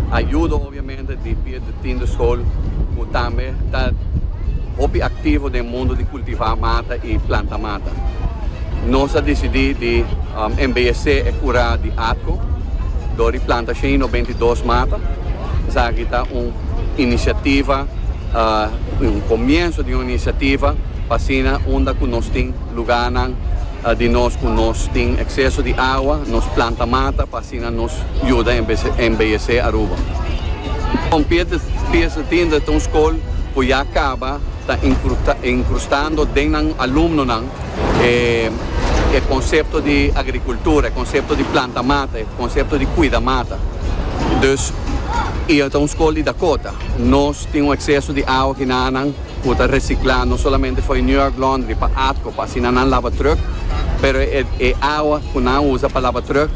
Ayudo obviamente di Piet de Tiende School cu tambe ta hopi activo den mundo di cultiva mata y planta mata. Nos a dicidi di embeyece e cura di Atco door di planta shen y nobentedos mata. Esaki ta un iniciativa, un comienzo di un iniciativa pa asina unda cu nos tin lugarnan di nos cu nos tin exceso di agua, nos planta mata pa. Tina nos yuda embeyesé Aruba. Un pieza tinta ta un skol ku ya kaba ta inkrustando den nan alumnonan e konsepto di agrikultura, e konsepto di planta mata, e konsepto di kuida mata. Dus i ta un skol di Dakota. Nos tin un ekseso di awa ki nanan. Cu ta recicla no solamente fo'i New York Laundry pa atco pa asina nan laba truck, pero e awa cu nan usa pa laba truck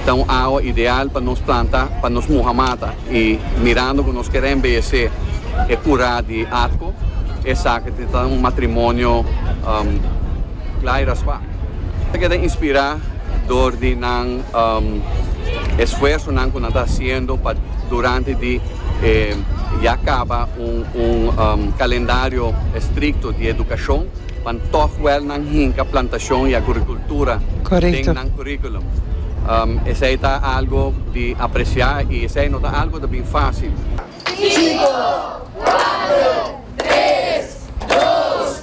ta un awa ideal pa nos planta, pa nos muha mata y mirando cu nos quier embellece e cura di atco esaki ta ta un matrimonio cla y raspa. Nan ta keda inspira door di nan esfuersonan cu nan ta haciendo pa durante di e ya caba. Un kalendario estrikto di edukashon pan tòg wèl nan hinka plantashon i agurikultura den nan kurikulum. Esei ta algu di apresiá i esei no ta algu ta bin fásil. Sinku, kuater, tres, dos.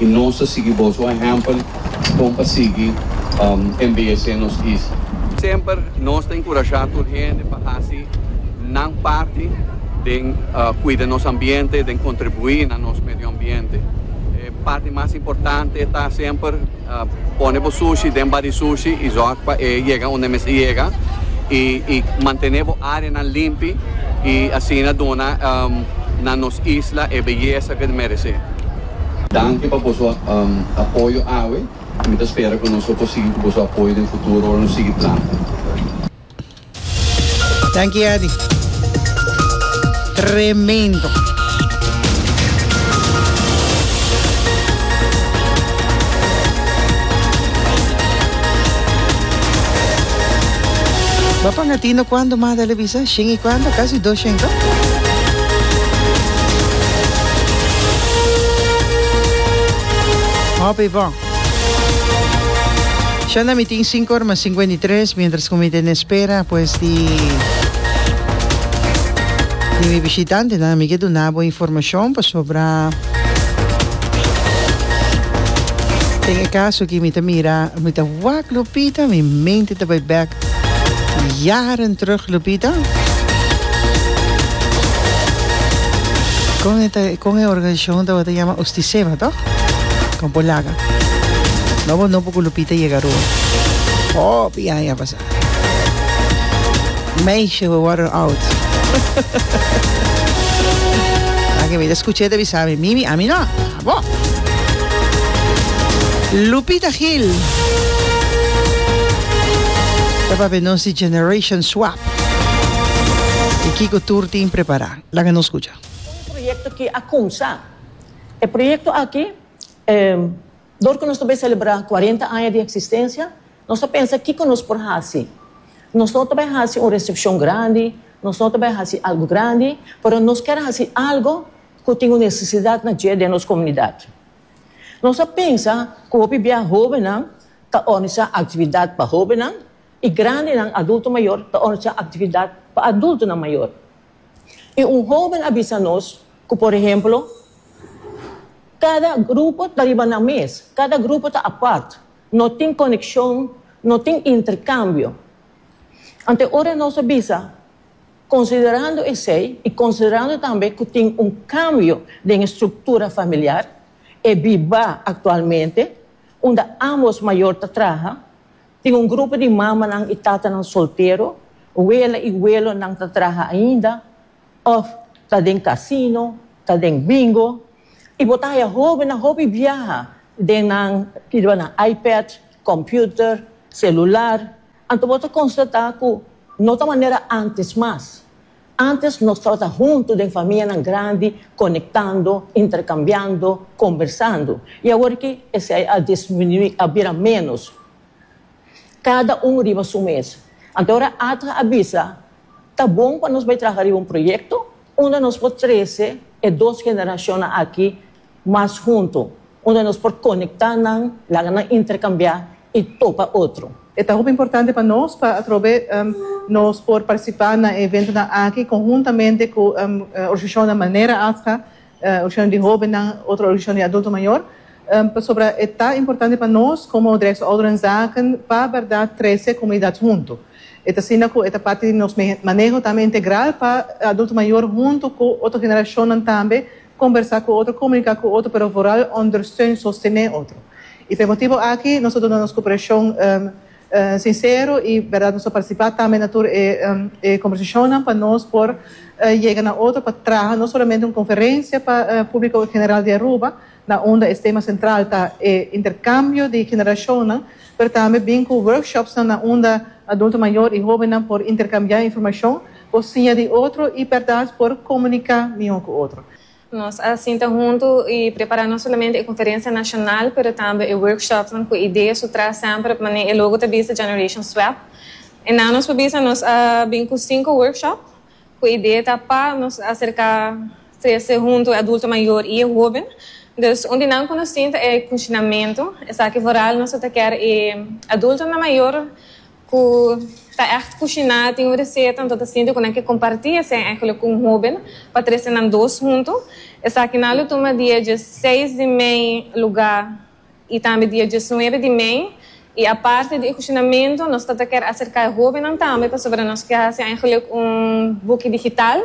y nos ta sigui boso ehempel con pa sigui embeyece nos isla. Semper nos ta encurasha tur hende pa haci nan parti den cuida nos ambiente, den contribui na nos medio ambiente. E parti mas importante ta semper pone bo sushi den badisushi y zorg pa e yega unda e mester yega y mantene bo areanan limpi y asina duna na nos isla e beyeza que merece. Danki pa boso apoyo awe i mi ta spera ku nos lo por sigui ku boso apoyo den futuro ora nos sigui plan. Danki Adi. Tremendo. Bo a pan a tino cuando mas dale. San shen i cuarenta, casi dos shen to. Hopi bo. Shanda mi tin cinco ora mas cincuenta y tres mientras cu mi ta en espera pues di di mi bishitantenan mi ke duna bo informacion pasobra den e caso aki mi ta mira mi ta wak Lupita mi mente ta bay bek Jaren terug Lupita. Con e ta con e organisacion tabata yama Ustiseba toch? Con Polaga. No bo no por cu Lupita yega Rua. Hopi aña pasa. Meisje we worden oud. Aki mi ta escucha e ta bisa mi mimi a mi no. Lupita Gil ta papia nos di Generation Swap y kico tur tin prepara. Laga nos scucha. Un proyecto ki a cumsa. E proyecto aki dor cu nos ta bay celebra cuarenta aña di existencia nos ta pensa kico nos por haci. Nos no ta bay haci un recepcion grandi, nos no ta bay haci algo grandi, pero nos kier haci algo ku tin un nesesidat na dje den nos komunidat. Nos a pensa ku hopi bia hóbennan ta òrganisá aktividat pa hóbennan i grandenan, adulto mayor, ta òrganisá aktividat pa adultonan mayor. I un hóben a bisa nos ku por ehemplo, Kada grupo ta riba nan mes, kada grupo ta apart, no tin konekshon, no tin interkambio. Anto ora nos a bisa. Konsiderando esei i konsiderando tambe ku tin un kambio den e struktura familiar, e bibá aktualmente, unda ámbos mayor ta traha, tin un grupo di mamanan i tatanan soltero, wela i welonan ta traha ainda òf ta den kasino, ta den bingo, i bo ta haya hóbennan hopi biaha den nan kibanan iPad, kòmpiuter, selular, Anto bo ta konstatá ku no ta manera ántes mas. Ántes nos tabata huntu den famianan grandi, konektando, interkambiando, kombersando. I awor aki esei a disminuí, a bira ménos. Kada un riba su mes. Anto ora Adra a bisa, Ta bon pa nos bai traha riba un proyekto unda nos por trese e dos generashonnan aki Mas huntu, unda nos por konektá nan, laga nan interkambiá i topa otro. E ta hopi importante pa nos pa atrobe nos por partisipá na e eventonan aki konhuntamente ku organisashonnan manera ATHGA, Organisashon di Hóbennan, otro organisashon di adulto mayor, pasobra e ta importante pa nos komo Direksio Ouderenzaken pa bèrdat trese e komunidat huntu. E ta asina ku e ta parti di nos maneho tambe integral pa adulto mayor huntu ku otro generashonnan tambe, Kombersá ku otro, komuniká ku otro, pero vooral ondersteun, sostené, otro. I por e motibu aki nos ta duna nos koperashon sinsero i bèrdat nos ta partisipá tambe na tur e kombersashonnan pa nos por yega na otro pa traha no solamente un konferensia pa públiko general di Aruba na unda e tema sentral ta e interkambio di generashonnan pero tambe bin ku workshops na unda adulto mayor i hóbennan por interkambiá informashon Bo siña di otro i bèrdat por komuniká mihó ku otro. Nos a sinta huntu i prepará no solamente e konferensia nashonal pero tambe e workshopnan ku e idea su tras semper manera e logo ta bisa Generation Swap. Esnan nos por bisa nos a bin ku sinku workshop ku e idea ta pa nos aserká trese huntu e adulto mayor i e hóben. Dus un di nan ku nos tin ta e kushinamentu, esaki foral nos lo ta kèr e adultonan mayor. ku ta ègt kushiná tin un reseta anto ta sinti ku nan ke kompartí esei ègele ku un hóben pa trese nan dos huntu. Esaki nan lo tuma dia dje seis di mei lugá i tambe dia dje nuebe di mei i aparte di e kushinamentu nos ta ta ker aserká e hóbennan tambe pasobra nos ke hasi ègele un buki digital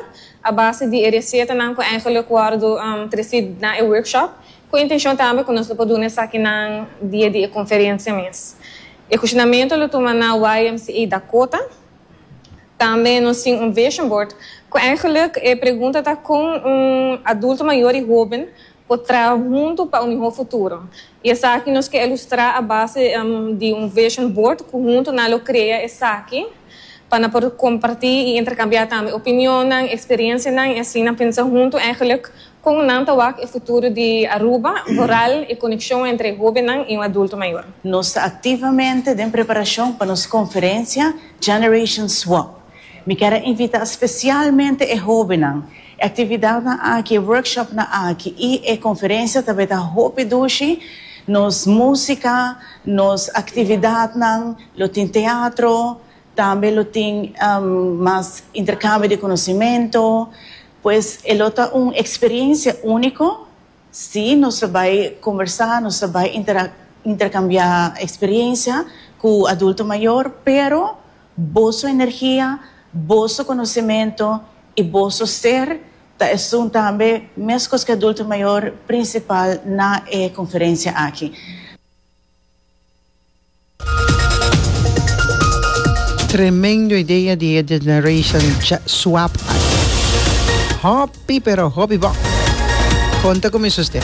a base di e resetanan ku ègele wòrdu tresí na e workshop. Ku e intenshon tambe ku nos lo por duna esakinan dia di e konferensia mes. E kuestionamentu lo tuma na YMCA Dakota. Tambe nos tin un vision board ku eingeluk e pregunta ta kon un adulto mayor i hoben por traha huntu pa un mihó futuro. I esaki nos ke elustrá a base di un vision board ku huntu nan lo krea esaki pa nan por kompartí i interkambiá tambe opinionnan, eksperiensianan i asina pensa huntu eingeluk Kon nan ta wak e futuro di Aruba, boral e konekshon entre e hóbennan i un adulto mayor? Nos ta aktivamente den preparashon pa nos konferensia Generation Swap. Mi ker a invitá spesialmente e hóbennan. E aktividatnan aki, e workshopnan aki i e konferensia tabata ta hopi dushi. Nos músika, nos aktividatnan lo tin teatro, tambe lo tin mas interkambio di konosementu. Pues e lo ta un experiencia unico, si nos ta bay conversa, nos ta bay intercambia experiencia cu adulto mayor, pero boso energia, boso conocimento y boso ser ta esun tambe mescos cu e adulto mayor principal na e conferencia aki. Tremendo idea di e Generation Swap ai. Hopi pero hopi bon. Con ta cuminsa usted?